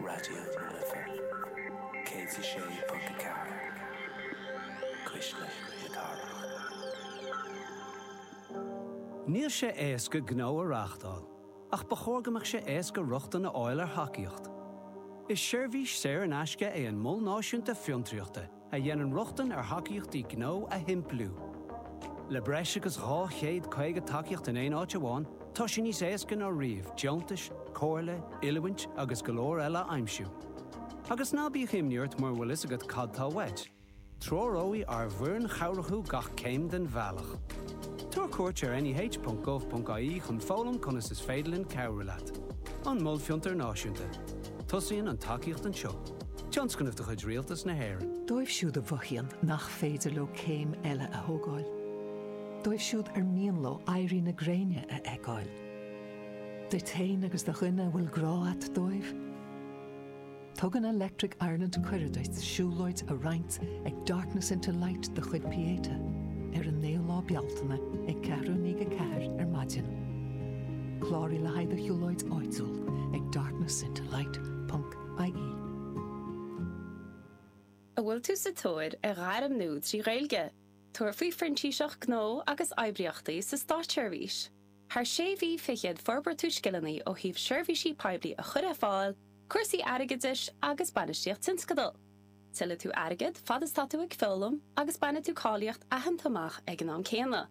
Raidió na Life 106.4 Cuisle na Cathrach. Níl sé éasca gnó a reáchtáil, ach ba chóir go mbeadh sé éasca rochtain a fháil ar thacaíocht. Is seirbhís saor in aisce é an Mol Náisiúnta Fiontraíochta, a dhéanann rochtain ar thacaíochtaí gnó a shimpliú. Le breis agus 250 tacaíocht in aon áit amháin, tá sé níos éasca ná riamh deontais, comhairle, oiliúint agus go leor eile a aimsiú. Agus ná bíodh imní ort mura bhfuil fhios agat cad tá uait, treoróidh ár bhfoireann chabhrach thú gach céim den bhealach. Tabhair cuairt ar neh.gov.ie chun foghlaim conas is féidir linn cabhrú leat. An Mol Fiontar Náisiúnta. Tosaíonn an tacaíocht anseo. Tionscnamh de chuid Rialtas na hÉireann. Dóibh siúd a mhothaíonn nach féidir leo céim eile a thógáil. Dóibh siúd ar mian leo éirí na gréine a fheiceáil. Duit féin agus do dhuine a bhfuil grá a't dóibh. Tugann Electric Ireland cuireadh duit siúlóid a roinnt ag Darkness into Light de chuid Pieta ar an 9ú lá Bealtaine ag ceathrú i ndiaidh a ceathair ar maidin. Cláraigh le haghaidh do shiúlóid áitiúil ag darknessintolight ponc ie. An bhfuil tú sa tóir ar ghairm nua trí Ghaeilge? Tabhair faoi Phrintíseacht Gnó agus Oibríochtaí sa Státseirbhís. Thar sé mhí fichead forbróidh tú scileanna ó thaobh seirbhísí poiblí a chur ar fáil, cúrsaí airgeadais agus bainistíocht tionscadal. Tuillfidh tú airgead fad is tá tú ag foghlaim agus bainfidh tú cáilíocht aitheanta amach ag an am céanna.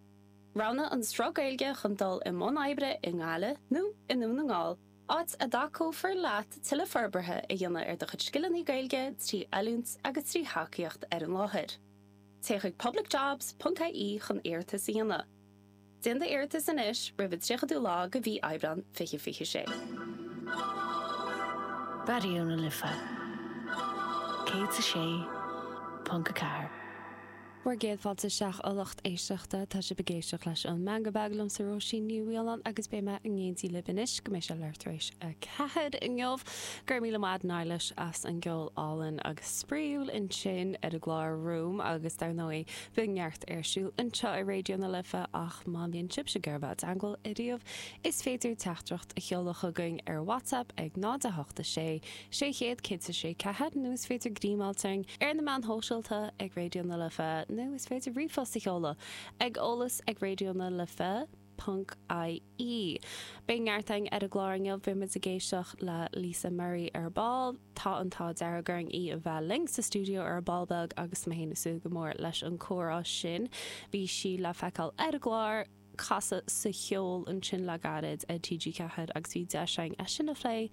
Roghnaigh an sruth Gaeilge chun dul i mbun oibre i nGaillimh nó i nDún na nGall, áit a dtacófar leat tuilleadh forbartha a dhéanamh ar do chuid scileanna Gaeilge trí oiliúint agus trí thacaíocht ar an láthair. Téigh chuig publicjobs.ie chun iarratas a dhéanamh. Déan d'iarratas anois roimh an 30ú lá de mhí Aibreán 2026. Raidió na Life 106.4. Bhur gcéad fáilte isteach, a lucht éisteachta. Tá sibh ag éisteacht leis an Meangadh Beag liomsa, Róisín Ní Mhiolláin, agus beidh mé in éindí libh anois go mbeidh sé leathuair tar éis a ceathair inniu. Go raibh míle maith agat Nilesh as an gceol álainn agus spraíúil ansin ar an gclár Room, agus dar ndóigh, bíonn neart ar siúl anseo ar Raidió na Life, ach má bhíonn sibhse ag iarraidh a bheith i dteangmháil ariamh, is féidir teachtaireacht a sheoladh chugainn ar WhatsApp ag 0 8 6 600 106 4, nó is féidir DMáilt orainn ar na meáin shóisialta ag Raidió na Life nó is féidir ríomhphost a sheoladh ag eolas ag raidiónalife ponc ie. Beidh neart againn ar an gclár inniu, beidh muid ag éisteacht le Lisa Murray ar ball, tá an t-ádh dearg orainn í a bheith linn sa stiúideo ar ball beag agus mé féin ag súil go mór leis an comhrá sin. Bhí sí le feiceáil ar an gclár. casadh sa cheol ansin le gairid ar TG4 agus bhí deis againn é sin a phlé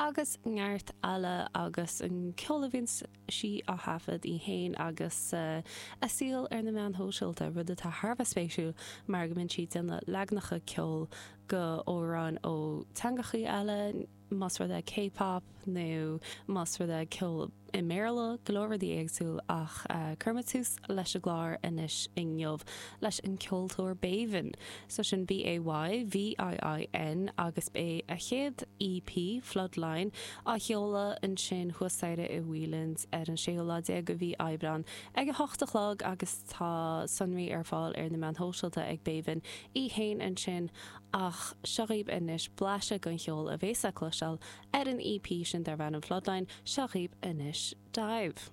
agus neart eile agus an ceol a bhíonn sí á thaifead í fhéin agus a saol ar na meáin shóisialta, rud atá thar a bheith spéisiúil mar go mbíonn sí ag déanamh leagnacha ceoil de amhráin ó teangachaí eile. más rud é K-pop nó más rud é ceol i mBéarla, go leor rudaí éagsúil ach cuirfimid tús leis an gclár anois inniu leis an ceoltóir Bayviin, so sin B-A-Y-V-I-I-N agus beidh a chéad EP, Floodline, á sheoladh ansin thuas staighre i Whelan's ar an séú lá déag de mhí Aibreán ag a hocht a chlog agus tá sonraí ar fáil ar na meáin shóisialta ag Bayviin í fhéin ansin. ach seo dhaoibh anois blaiseadh den cheol a bheas le cloisteáil ar an EP sin darb ainm Floodline, seo dhaoibh anois Dive.